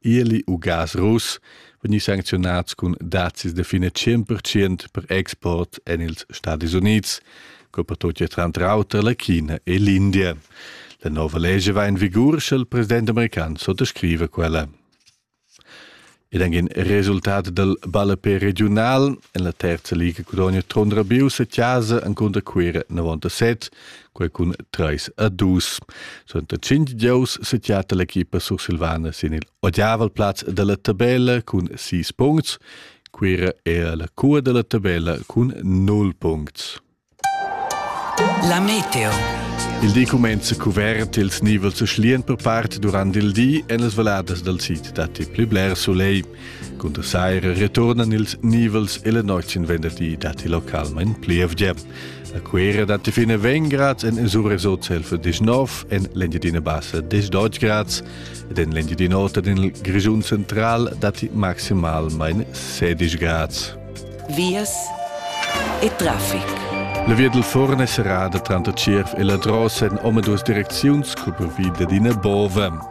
Ieli u gas russ vegni sancziunats cun dazis de fine 100% per export en ils Stadis Unids, co per tutti tranter auter la China e l'India. La nova legge va in vigur, sche il president american sottoscrive quella. Ed anche il risultato del ballepé regional, en la terza liga cudogna tondra bius a casa en conta quera 97, quei cun treis a dus. Suenter cinc gious setiata l'equipa sursilvana sin il odiavel plaz dalla tabella cun sis puncts. Quira era la cua dalla tabella cun null puncts. La meteo. Il di comenza cuvert ils nivels schlian per part durant il di en las valadas dal sid datti pli bler soleil. Cunter saira returnan ils nivels e la notg in venderdi datti localmain plievgia. La cuera datti fin a 20 grads en Zuresot selfe dis 9, en l'Engiadina Bassa dis 12 grads ed en l'Engiadina Ota en il Grischun Central datti maximalmain 16 grads. Vias e traffic. La via del Forn è serrada tranter Tschierv e la Drossen, omaduas direcziuns, cupra vi d'ina bova.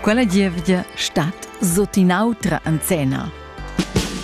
Quella gievgia stat sut in'autra enzena.